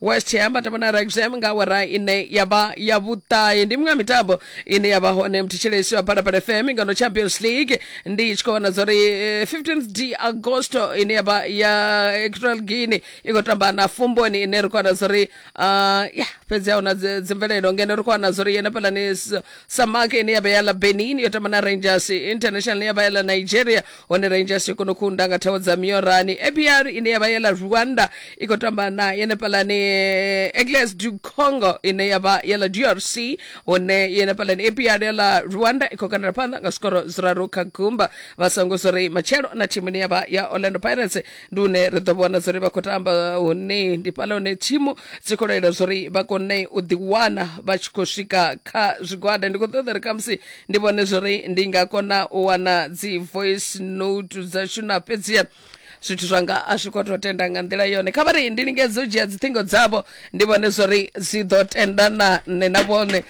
west ham vha tamba na rexham nga awara ine ya vha ya vhuṱahe ndi miṅwe ya mitambo ine ya vha hone mthetshelesi wa phalaphala fm ngano champions league ndi tshi khou vhona zwa uri eh, 15th d agosto ine ya vha ya equatorial guinea i khou tamba na fumboni ine ri khou wana zwa uri ah, ya fhedzi a huna dzi- dzimvelelo ngeno ri khou wana zwa uri yena phalani samak ine ya vha ya la benin yo tamba na rangers international ya vha ya la nigeria hone rangers yo kona u kunda nga thawo dza miorani apr ine yavha yela rwanda i khou tamba na yenefhalani egles du congo ine yavha yela drc hone yenefhalani apr yela rwanda i khou kandela phanḓa nga zwikhoro zwiraru kha gumba vha songo zwo ri matshelo na thimu ine yavha ya orlando pirates ndi une ri ḓo vhona zwo ri vha khou tamba hone ndi fhala hone thimu dzi khou lwela zwo ri vha kone u ḓiwana vha tshi khou swika kha zwigwada ndi khou ṱoḓa ri khamusi ndi vhone zwori ndi nga kona u wana dzi voice note dzashu na fhedziha zwithu zwanga a zwi khou tou tenda nga nḓila yone kha vha ri ndi lingedze u dzhia dziṱhingo dzavho ndi vhone zwori dzi ḓo tenda na nṋe na vhone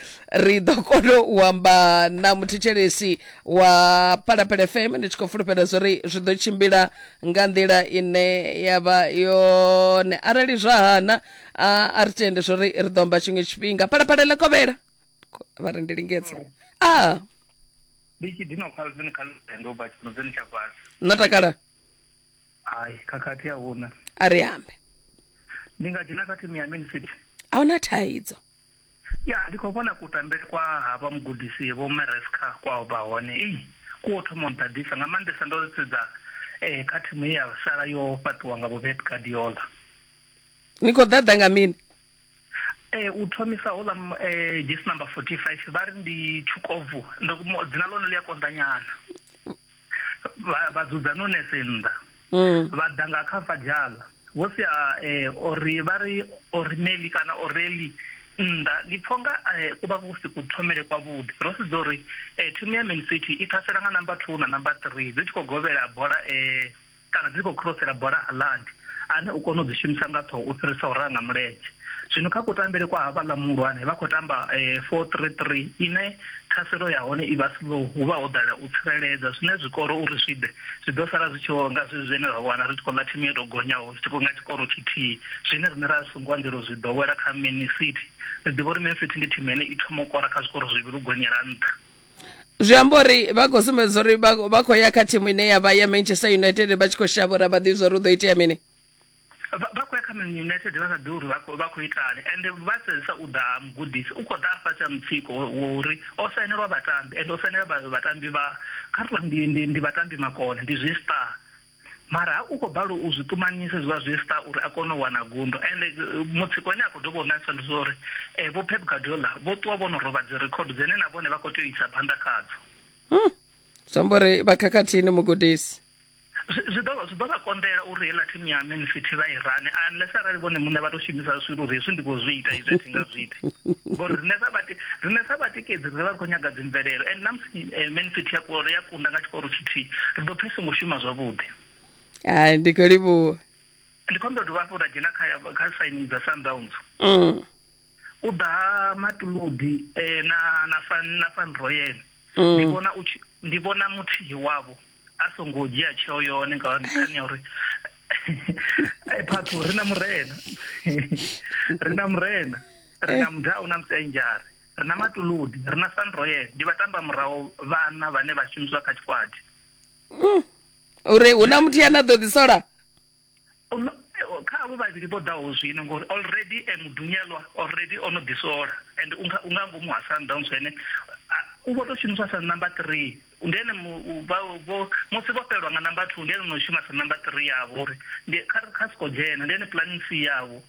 ri ḓo kona u amba na muthetshelesi wa palapele fm ndi tshi khou fulufhela zwori zwi ḓo tshimbila nga nḓila ine ya vha yone arali zwa hana a a ri tende zwori ri ḓo amba tshiṅwe tshifhinga palapale ḽa kovhela Ko- vha ri ndi lingedze a ndi tshi dina khalo dzine kha lutendo ba tshino dzine tsha fhasi no takala hayi khakhathi a huna a ri ambe ndi nga dzhena kha thimu ya man city a hu na thaidzo ya ndi khou vhona kutambele kwa havha mugudisi vho maresca kwao vha hone ei ku o thoma u nḓaḓisa nga maanḓesa ndo sedza um kha thimu ye ya sala yo fhaṱiwa nga vho pep guardiola ni khou ḓaḓa nga mini Ee, u thomisa houḽa m- eh, dzhesi namba 45 vha ri ndi tshukovu Ndo- mo- dzina ḽone ḽi a konḓanyana vha vha dzudza nunese nnḓa Mm. vha ḓa nga kha fadzhala vho sia eh, ori vha ri orineli kana oreli nnḓa ndi pfho nga eh, ku vha kusi ku thomele kwavhuḓi ro sedza uri eh, thimu ya man city i ṱhasela nga namba two na namba three dzi tshi khou govhela bola eh, kana dzi tshi khou khirosela bola a Landi, ane u kona u dzi shumisa nga ṱhoho u fhirisa u raha nga mulenzhe. Zwino kha kutambele kwa havhaḽa muhulwane, vha khou tamba 4-3-3 ine ṱhaselo ya hone i vha slow, hu vha ho ḓala u tsireledza, zwine zwikoro uri zwi ḓe, zwi ḓo sala zwi tshi vho nga zwezwi zwine ra wana ri tshi khou ḽa thimu yo tou gonyaho zwi tshi khou nga tshikoro tshithihi, zwine riṋe ra so ngo anzela u zwi ḓowela kha Man City. Ri ḓivha uri Man City ndi thimu ine i thoma u kora kha zwikoro zwivhili u gonyela nṱha. zwi amba uri vha khou sumbedza uri vha khou ya kha thimu ine ya vha ya manchester united vha tshi khou shavha uri a vha ḓivhi zwa uri u ḓo itea mini vha khou ya kha man united vha sa ḓi uri vha khou itani ende vha sedzisa u ḓa mugudisi u khou ḓa afha tsha mutsiko uri o sainelwa vhatambi ende o sainela vhatambi vha kha ri ndi vhatambi makone ndi zwi star mara u khou balelwa u zwi ṱumanyisa hezwiḽa zwi star uri a kone u wana gundo and eh, mutsiko ane a khou dovha u nakisa ndi zwa uri um vho pep gadola vho ṱuwa vho no rovha dzi record dzine na vhone vha khou tea u isa phanḓa khadzo hmm. zwamba uri vha khakhathini mugudisi zwi ḓo zwi ḓo vha konḓela uri heiḽa thimu ya man city vha i rane unless arali vhone muṋe vha tou shumisa zwithu uri hezwi ndi khou zwi ita izwi a thi nga zwi ita ngori riṋe sa vhatikedzi ri vha ri khou nyaga dzimvelelo and namusi eh, man city ya kunda nga tshikoro tshithihi ri ḓo pfa i songo shuma zwavhuḓi hai ndi khou livhuwa ndi khou ndo dovha hafhu ra dzhena kha kha sainini dza sundowns mm. u ḓa matuludi eh, na na fan na fan royal mm. ndi vhona u ndi vhona muthihi wavho a songo dzhia tsheo yone nga nṱhani ya uri eh, phathu ri na murena ri na murena ri na eh. mudau na musenjare Ri na Matuludi, ri na Sandroyel, ndi vhatambamuraho vhaṋa vhane vha shumiswa kha tshikwati. Mm. Uri hu na muthu ane a ḓo ḓisola? kha avho vhavhili vho ḓaho zwino ngori already e mudunyelwa already o no ḓisola and u nga u nga ngomu ha Sundowns ene u vho tou shumiswa sa number 3 ndi ene vho musi vho fhelelwa nga number 2 ndi ene no shuma sa number 3 yavho uri ndi kha kha siko dzhena ndi ene planning C yavho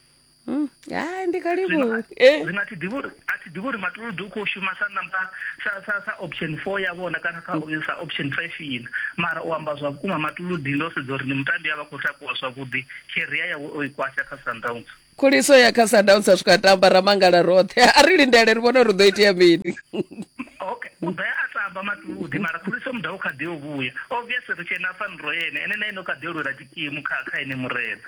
Mm, hai ndi kalibu eh. zwino a thi ḓivhi uri a thi ḓivhi uri matuludu u khou shuma sa namba sa sa sa option 4 ya vhona kana sa sa option 5 ina mara u amba zwa vhukuma matuludi ndo sedza uri ndi mutambi a vha khou takuwa zwavhuḓi career yawe o i kwasha kha sundowns khuliso ya kha sundowns a swika tamba ra mangala roṱhe a ri lindele ri vhone uri ḓo itea mini okay u ḓa a tamba matuludi mara khuliso muda u kha ḓi o vhuya obviously ri tshena faniro yene ene na ene u kha ḓi o lwela tshikimu kha kha ene murena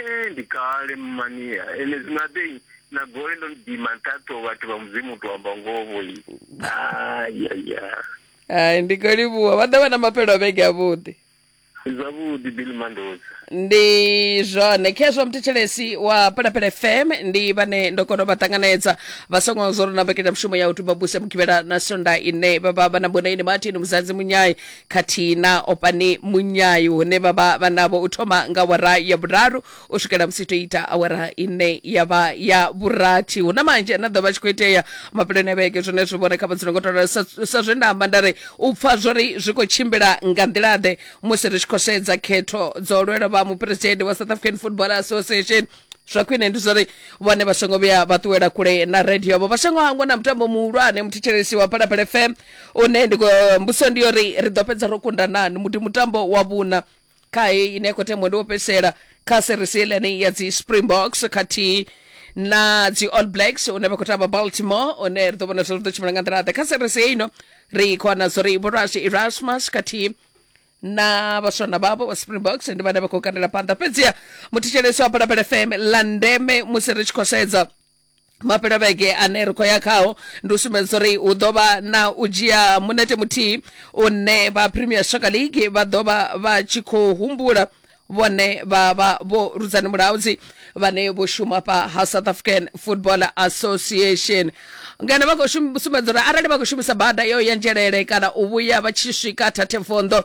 Ee, ndi kale mmania ene zwino abeyi na gole ndo lidima nṱhaṱho vhathu vha mudzimu u to amba ngovo i ayaya hai ndi khou livhuwa vha ḓo vha na maphelo a vhege avhuḓi zwavhuḓi bill mandoza ndi zwone khezwo mthetshelesi wa pelapele fm ndi vhane ndo kona u vha ṱanganedza vha songo zwo ri na mbekanyamishumo ya u tuba buse mugivhela na sonda ine vha vha vha na mbondaini martin muzadzi munyai khathihi na opani munyayu hune vha vha vha navho u thoma nga awara ya vhuraru u swikela musi to ita awara ine ya vha ya vhurathi hu na manzhi ane a ḓo vha tshi khou itea mafheloni a vhege zwine zwi vhona kha vhadzula ngo tola sa sa zwe nda amba nda ri u pfa zwo ri zwi khou tshimbila nga nḓila-ḓe musi ri tshi khou sedza khetho dzo lwelwa vha muphuresidennde wa south african football association zwa khwine ndi zwori vhone vha songo vhuya vha ṱuwela kule na radio yavho vha songo hangwa na mutambo muhulwane muthetshelesi wa phalaphala fm une ndi khou- mbudziso ndi yori ri ḓo fhedza ro kunda nani muti mutambo wa vhuna kha heyi ine ya khou tembwa ndi wo fhedzisela kha series yelenei ya dzi springboks khathihi na dzi all blacks une vha khou tamba baltimore une ri ḓo vhona zwo ri ḓo tshimbila nga nḓila ḓe kha series heino ri khou wana zori vhorasi erasmus khathihi na vhaswana vhavho vha springboks ndi vhane vha khou kandela phanḓa fhedziha muthetshelesi wa balabala fm la ndeme musi ri tshi khou sedza mapelovhege ane ri khou ya khao ndi u sumbedza uri hu ḓo vha na u dzhia munete muthihi une vha premier soccer league vha ḓo vha vha tshi khou humbula vhone vha vha vho rudzani mulaudzi vhane vho shuma fha ha south african football association ngeno vha khou shum- sumbedza uri arali vha khou shumisa bada yo ya nzhelele kana u vhuya vha tshi swika thathefondo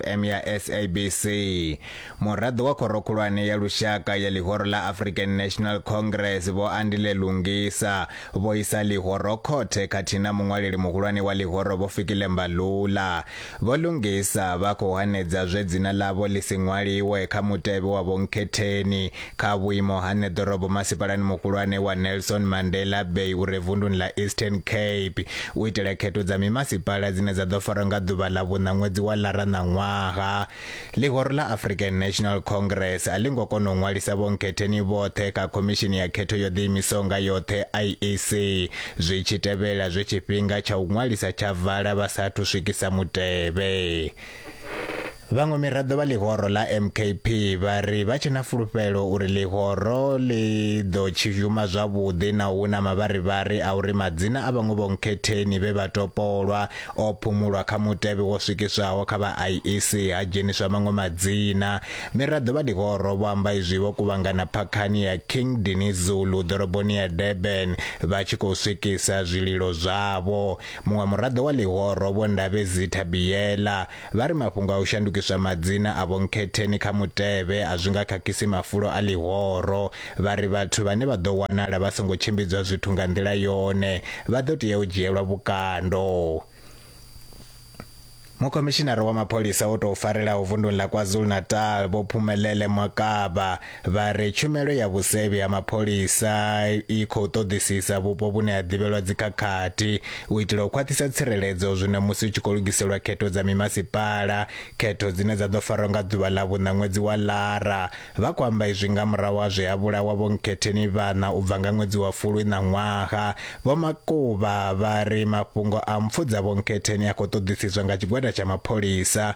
FM ya SABC. Muraḓo wa khoro khulwane ya lushaka ya ḽihoro ḽa African National Congress vho Andile Lungisa vho isa ḽihoro khothe khathihi na muṅwaleli muhulwane wa ḽihoro vho Fikile Mbalula. Vho Lungisa vha khou hanedza zwe dzina ḽavho ḽi si ṅwaliwe kha mutevhe wa vhonkhetheni Kha vhuimo ha nṋe ḓorobo masipalani muhulwane wa Nelson Mandela Bay u re vunduni ḽa Eastern Cape u itela khetho dza mimasipala dzine dza ḓo farwa nga ḓuvha ḽa vhuṋa ṅwedzi wa Lara ṋaṅwaha. Ḽihoro ḽa African National Congress a ḽi ngo kona u ṅwalisa vhonkhetheni vhoṱhe kha khomishini ya khetho yo ḓiimisaho nga yoṱhe IEC zwi tshi tevhela zwe tshifhinga tsha u ṅwalisa tsha vala vha sa athu swikisa mutevhe. Vhaṅwe miraḓo vha ḽihoro ḽa MKP vha ri vha tshe na fulufhelo uri ḽihoro ḽi ḓo tshizhuma zwavhuḓi na hu na mavharivhari a uri madzina a vhaṅwe vhonkhetheni vhe vha topolwa o phumulwa kha mutevhe wo swikiswaho kha vha IEC ha dzheniswa maṅwe madzina. Miraḓo vha ḽihoro vho amba izwi vho kuvhangana phakhani ya King Denis Zulu ḓoroboni ya Durban vha tshi khou swikisa zwililo zwavho. Muṅwe muraḓo wa ḽihoro Vho Ndabezi Thabiyela Vha ri mafhungo a u shandukiswa madzina a vhonkhetheni kha mutevhe a zwi nga khakhisi mafulo a ḽihoro. Vha ri vhathu vhane vha ḓo wanala vha songo tshimbidzwa zwithu nga nḓila yone vha ḓo tea u dzhielwa vhukando. Mukhomishinara wa mapholisa o tou farelaho vunḓuni ḽa KwaZulu-Natal, Vho Phumelele Mwakaba, vha ri tshumelo ya vhusevhi ha mapholisa i khou ṱoḓisisa vhupo vhune ha ḓivhelwa dzikhakhathi u itela u khwaṱhisa tsireledzo zwino musi u tshi khou lugiselwa khetho dza mimasipala khetho dzine dza ḓo farwa nga ḓuvha ḽa vhuṋa ṅwedzi wa lara vha khou amba izwi nga murahu ha zwe ha vhulawa vho nkhetheni vhana u bva nga ṅwedzi wa fulwi ṋaṅwaha vho makuba vha ri mafhungo a mpfu dza vho nkhetheni a khou ṱoḓisiswa nga tshigwada tsha mapholisa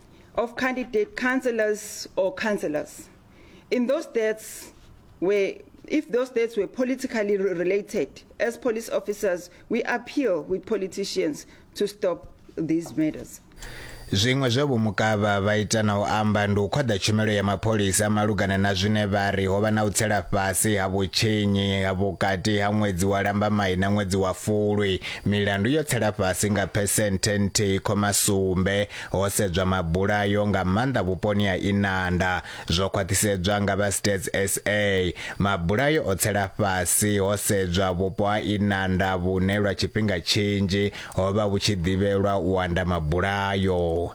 of candidate councillors or councillors. In those deaths, where if those deaths were politically related, as police officers, we appeal with politicians to stop these murders. zwiṅwe zwe vhomukavha vha ita na u amba ndi u khwaḓa tshumelo ya mapholisa malugana na zwine vha ri ho vha na u tsela fhasi ha vhutshinyi ha vhukati ha ṅwedzi wa lambamai na ṅwedzi wa fulwi milandu yo tsela fhasi nga phesenthe nthihi khoma sumbe ho sedzwa mabulayo nga maanḓa vhuponi ha Inanda, zwo khwaṱhisedzwa nga vha Stats sa. Mabulayo o tsela fhasi ho sedzwa vhupo ha Inanda vhune lwa tshifhinga tshinzhi ho vha vhu tshi ḓivhelwa u anda mabulayo.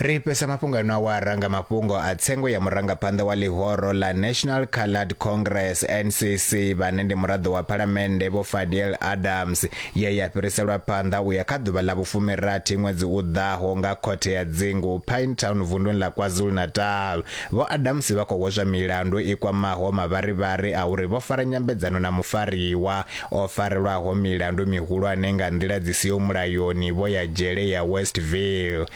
Ri fhesa mafhungo ano awara nga mafhungo a tsengo ya murangaphanḓa wa ḽihoro ḽa National Coloured Congress, NCC, vhane ndi muraḓo wa Phalamennde Vho Fadiel Adams ye ya fhiriselwa phanḓa u ya kha ḓuvha ḽa vhufumirathi ṅwedzi u ḓaho nga khothe ya dzingu Pinetown vunḓuni ḽa KwaZulu-Natal. Vho Adams vha khou hweswa milandu i kwamaho mavharivhari a uri vho fara nyambedzano na mufariwa o farelwaho milandu mihulwane nga nḓila dzi siho mulayoni vho ya dzhele ya Westville.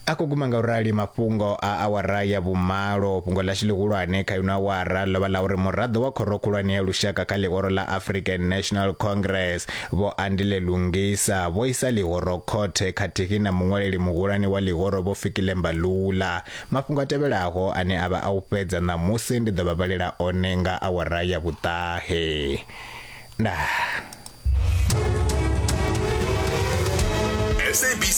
A khou guma nga u rali mafhungo a awara ya vhumalo. Fhungo ḽashu ḽihulwane kha ino awara ḽo vha ḽa uri muraḓo wa Khoro Khulwane ya Lushaka kha ḽihoro ḽa African National Congress, Vho Andile Lungisa, vho isa ḽihoro khothe khathihi na muṅwaleli muhulwane wa ḽihoro Vho Fikile Mbalula. Mafhungo a tevhelaho ane a vha a u fhedza ṋamusi ndi ḓo vha vhalela one nga awara ya vhuṱahe. Ndaa.